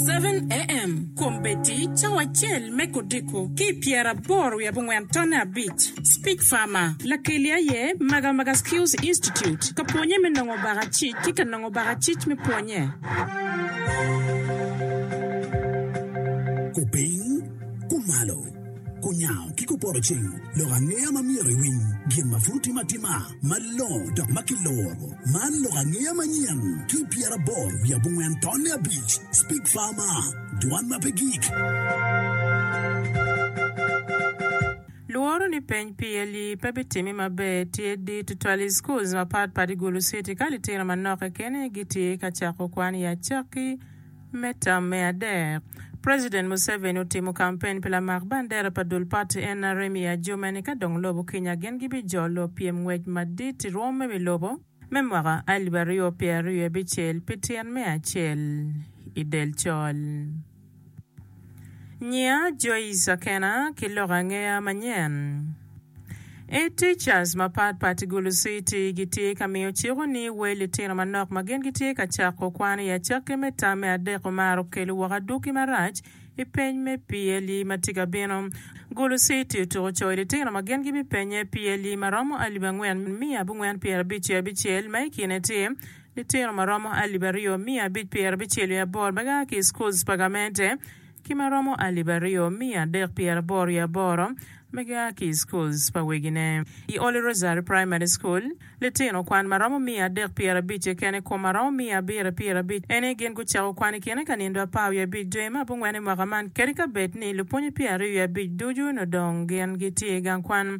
7am, Kombeddi, Cawa acel me kodiko ki i pyeraboro wiye abongwen tonne abic, Speech Farmer, Lakeli aye Magamaga Skills Institute ka pwonye me nongo bakacic ki ka nongo bakacic me pwonye. Kupiny, kumalo. Kunyango ki kupoto cing, lok angeya ma myero iwiny, gin ma pud timo atima malongo dok ma kiloro. Man lok angeya manyen ki pyeraboro wiye abongwen tonne abic, Speak Farmer, Dwan ma pe gik. Lworo ni peny PLE pe bitimi maber tye di tutwal i schools mapatpat i Gulu City ka litino manok keken aye gitye ka cako kwan i acakki. Me tam me adek, President Museveni otimo kampen pi lamak bandera pa dul pati nrm i Adjumani ni ka dong lobo kinya gin gibijolo pyem ngwec madit i rwom me wi lobo me mwaka alip aryo pyeraryo abicel pi tyen me acel i del col. Nyinga Joyce Akena ki loko angeya manyen I teachers mapat pat I Gulu City gitye ka miyo cik ni wel litino manok ma gin gitye ka cako kwan I acakki me tam me adek omaro kelo woko adwogi marac I peny me PLE ma tye ka bino. Gulu City otuko coyo litino ma gin gibipenye PLE ma romo alip angwen miya abongwen pyerabic ki abicel ma I kine tye Litino ma romo alip aryo miya abic pyer abicel i aboro ma gia ki i schools pa gamente ki ma romo alip aryo miya adek pyer aboro i aboro ma gia ki i schools pa wegine. I Holy Rosary Primary School, litino kwan ma romo miya adek pyer abic keken i kom ma romo miya abiro pyer abic. Eni gin gucako kwan i kine ka nindo apar wiye abic dwe me abongwen i mwaka man kadi ka bed ni lupwonye pyer aryo wiye abic ducu onongo dong gin gitye i gang kwan.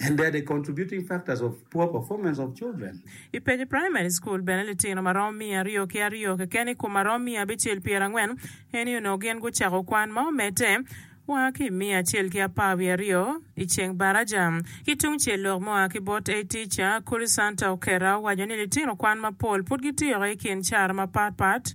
And they're the contributing factors of poor performance of children. I page primary school bene litino maromo miya aryo ki aryo keken i kom maromo miya abicel pyera angwen eni onongo gin gucako kwan ma omedde wa ki i miya acel ki apar wiye aryo i ceng baraja. Ki tung cel lok mua ki bot a teacher, Kuli Santa Okera owaco ni litino kwan mapol pud gitiro i kin cara mapat pat,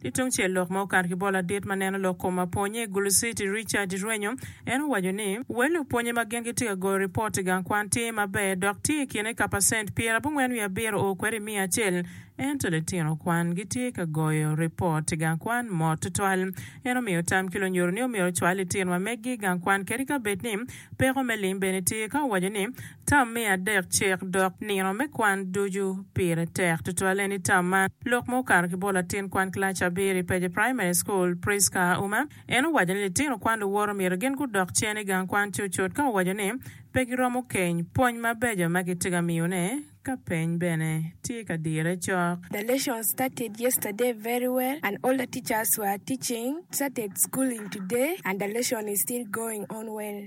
Ki tung cel, lok ma okato ki bot ladit ma neno lok kom mapwonye i Gulu City, Richard irwenyo, en owaco ni, Wel lupwonye ma gin gitye ka goyo ripot i gang kwan tye maber dok tye i kine ka pacent pyer abongwen wiye abiro oo kwede i miya acel. Ento litino kwan gitye ka goyo ripot i gang kwan mot tutwal. En omiyo tam ki lunyodo ni omyero ocwal litino ma meggi i gang kwan kadi ka bed ni peko me lim bene tye ka owaco ni, Tam me adek cek dok nino me kwan ducu pire tek tutwal en i tam man lok ma okato ki bot latin kwan kilac abiro i Peje Primary School, Prisca Auma. En owaco ni litino kwan luwot omyero gin gudok cen i gang kwan cutcut ka owaco ni pe giromo keny pwony mabeco ma kitye ka miyone ka peny bene tye ka dire cok. The lesson started yesterday very well and all the teachers were teaching, started schooling today and the lesson is still going on well.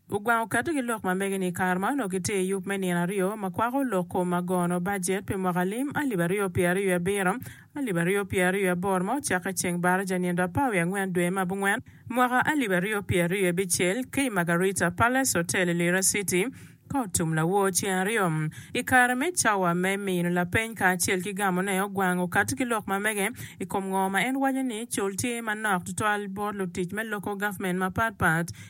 Gugwango keto ki lok ma mege ni ikare ma onongo gitye i yub me nino aryo ma kwako lok kom ma gono bajet pi mwaka lim alip aryo pyer aryo abiro, alip aryo pyer aryo aboro ma ocakke ceng Baraja nindo apar wiye angwen dwe ma abungwen mwaka alip aryo pyer aryo abicel ki i Margarita Palace Hotel i Lira City ka otum lawor ceng aryo ikare me cawa me mino lapeny kacel ki gamo ne ogwango kati ki lok ma mege ikom ngo ma en waco ni col tye manok tutwal bot lutic me loko government mapat pat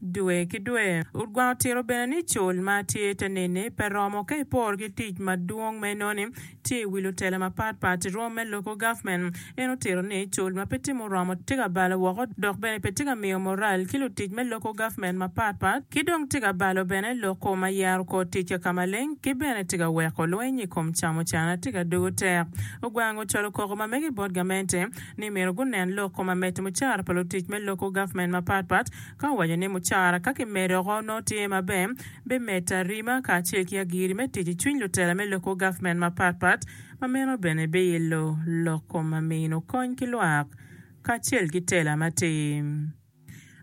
Dwe ki dwe, Rutgwang otito bene ni col ma tye i te neni pe romo ka iporo ki tic madwong ma enoni tye i wi lutela mapat pat i rwom me Local Government. En otito ni col ma pe timo romo tye ka balo woko dok bene pe tye ka miyo moral ki lutic me Local Government mapat pat ki dong tye ka balo bene loko ma yero kor tic kaka maleng ki bene tye ka weko lweny i kom camo cana tye ka dugo tek. Rutgwang ocwalo koko ma mege bot gamente ni myero gunen loko ma mete mucara pa lutic me Local Government mapat pat Ka waco ni mucara ka kimedo oko nongo tye maber, bimedta rima kacel ki agiri me tic i cwiny lutela me lok kor gavment mapat pat, ma meno bene biilo lok kom ma mino kony ki lwak kacel ki tela matir.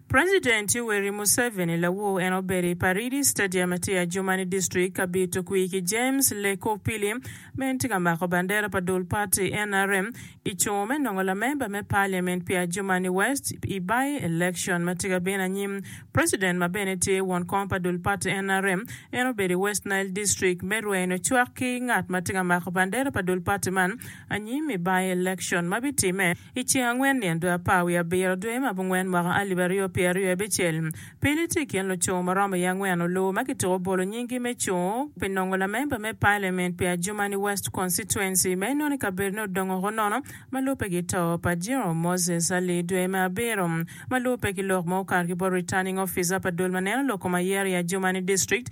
President Yoweri Museveni lawoo en obedo i Paridi Stadium ma tye i Adjumani District ka bito kwir ki James Lekopili ma en tye ka mako bandera pa dul party nrm Icungo me nongo lamemba me parliament pi Adjumani West i by election ma tye ka bino anyim. President ma bene tye won kom pa dul party nrm en obedo i West Nile district me rweny ocwak ki ngat ma tye ka mako bandera pa dul party man anyim i by election ma bitimme iceng angwen nyen dwe apar wiye abiro dwe ma abongwen mwaka alip aryo pyeraryo abicel. Pele tye i kin luco ma romo i angwen oloo ma kitiko bolo nyinggi me cung pi nongo lamemba me Pailament pi Adjumani West Constituency ma inoni kabedone odongo ko nono ma lubbe ki to pa Jerome Moses Ali dwe me abiro ma lubbe ki lok ma okato ki bot Returning Officer pa dul ma neno lok kom ayer i Adjumani District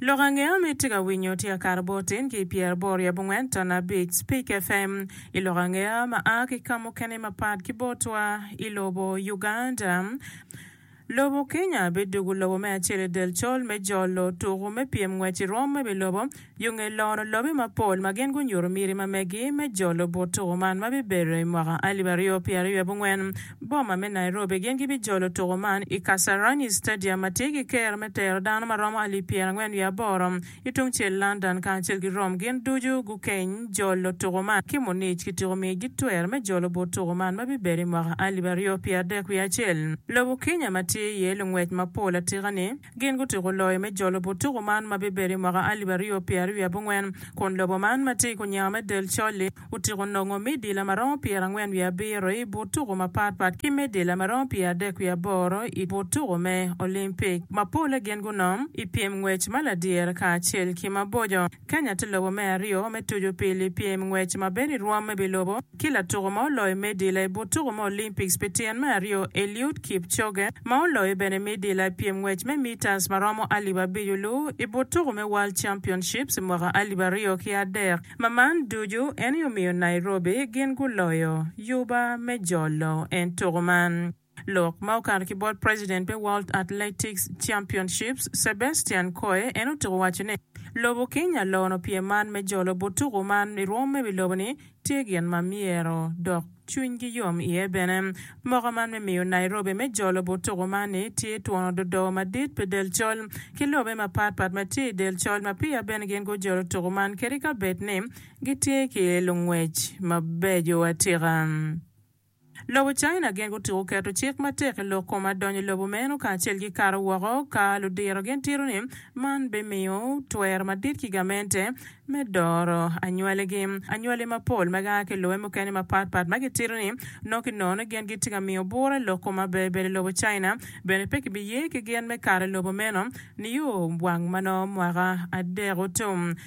Lok ange ma itye ka winyo tye akato bot tin ki pyer aboro i abongwen ton abic Speak FM i lok ange ma a ki ka mukene mapat ki botwa i lobo Uganda, lobo Kenya bidugu lobo me acel i del col me jolo tuku me pyem ngwec i rwom me bilobo yo nge loro lobe mapol ma gin gunyuto miti ma megi me jolo but tuku man ma bibedo i mwaka alip aryo pyeraryo abongwen. boma me Nairobi gin gibijolo tuko man i Kasarani Stadium ma tye ki ker me tero dano ma romo alip pyerangwen wiye aboro i tungcel London kacel ki Rome gin ducu gukeny jolo tuko man ki Munich kityeko miyo gi twer me jolo but tuko man ma bibedo i mwaka alip aryo pyerardek wiye acel. Lobo Kenya ma tye iye lungwec mapol atika ni Gin gutyeko loyo me jolo but tuku man ma bibedo i mwaka alip aryo pyera aryo abongwen, kun lobo man ma tye i kunyenga me del col-li otyeko nongo medila ma romo pyerangwen wiye abiro i but tuku mapat pat ki medila ma romo pyeradek wiye aboro i but tuku me Olimpik. Mapolle gin gunom i pyem ngwec ma ladyere kacel ki maboco. Kenya tye lobo me aryo me tucu pi lipyem ngwec ma bedo i rwom me bi lobo ki latuko ma oloyo medila i but tuko me Olympics pi tyen me aryo Eliud Kipchoge ma oloyo bene medila i pyem ngwec me metres ma romo alip abic oluw i but tuko me World Championships i mwaka alip aryo ki adek ma man ducu en aye omiyo Nairobi gin guloyo yuba me jolo en tuko man. Lok ma okato ki bot president me World Athletics Championships, Sebastian Coe en otuko waco ni, Lobo Kenya lono pyem man me jolo bot tuko man i rwom me wi lobo ni tye gin ma myero dok cwinygi yom iye bene. Moka man me miyo Nairobi me jolo bot tuko man ni tye twongo dodo madit pi del col ki lobe mapat pat ma tye i del col ma peya bene gin gujolo tuko man kadi ka bed ni gitye ki lungwec mabeco atika. Lobo China gin gutuko keto cik matek i lok kom adonyo lobo meno kacel ki kato woko ka ludiro gin tito ni man bimiyo twer madit ki gamente me doro anywali gi. Anywali mapol ma gia ki lobe mukene mapat pat ma gitito ni nongo ki nono ni gin gitye ka miyo bura i lok kom aberber i lobo China bene pe ki biye ki gin me kato lobo meno nio wang manongo mwaka adek otum.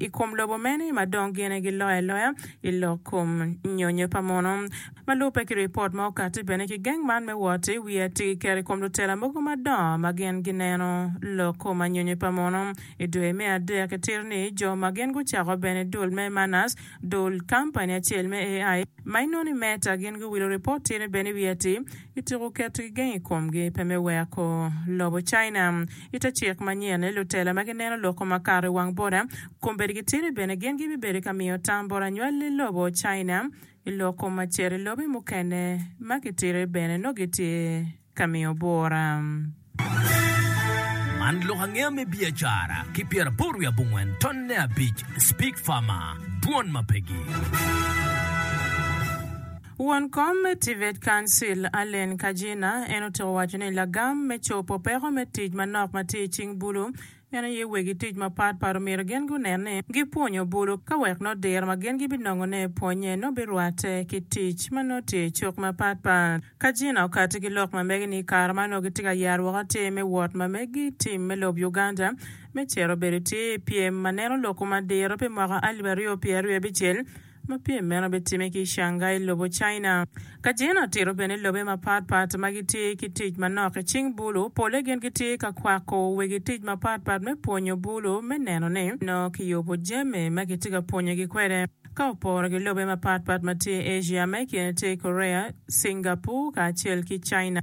i kom lobo meno ma dong gine giloyo aloya i lok kom nyonyo pa muno. Ma lubbe ki ripot ma okatti bene ki geng man me wot, wi ati ki keto i kom lutela mogo madongo ma gin gineno lok kom anyonyo pa muno. I dwe me adek ki tir ni, jo ma gin gucako bene dul me Manners, dul kampani acel me AI, ma inongo ni Meta, gin guwilo ripot tirne bene wi ati. Kityeko keto gigeng i komgi pe me weko lobo China. I te cik manyen-ni, lutela ma gineno loko makato i wang bota kombeddi gitidi bene gin gibibedo ka miyo tam bot anywali lobo China i lok kom maciro i lobe mukene ma gitidi bene nongo gitye ka miyo bota. Man lok angeya me biacara ki pyeraboro wiye abongwen tonne abic Speak Fama, Dwon ma Pegi. Won kom me TVET Council, Allen Kajina, en otiko waco ni lagam me cobo peko me tic manok ma tye i cing bulu Meno aye wegi tic mapat pat omyero gin gunen ni gipwonyo bulu ka wek nongo diro ma gin gibinongone i pwonye nongo birwatte ki tic ma nongo tye i cuk mapat pat. Ka Gina okatti ki lok ma mege ni i kare ma nongo gitye ka yero woko atir me wot ma megi tim me lob Uganda me cito bedo tye i pyem ma neno lokwu madiro pi mwaka alip aryo pyeraryo abicel, ma pyem meno bitimme ki i Shanghai, lobo China. Ka jene otito bene lobe mapat pat ma gitye ki tic manok i cing bulu, pole gin gitye ka kwako wegi tic mapat pat me pwonyo bulu me neno ni nongo kiyubo jami ma kitye ka pwonyogi kwede. Ka oporo ki lobe mapat pat ma tye i Asia, ma i kine tye Korea, Cingapur, kacel ki China,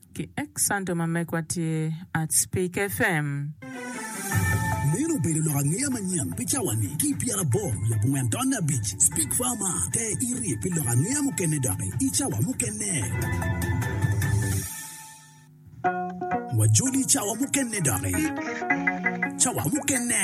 Ki ek santo ma megwa tye Artspeak FM. Meno obedo lok angeya manyen pi cawa ni ki pyera aboro wiye abongwen taon me abic. Speak far mar te iri pi lok angeya mukene doki i cawa mukene. Wajoli cawa mukene doki. Cawa mukene.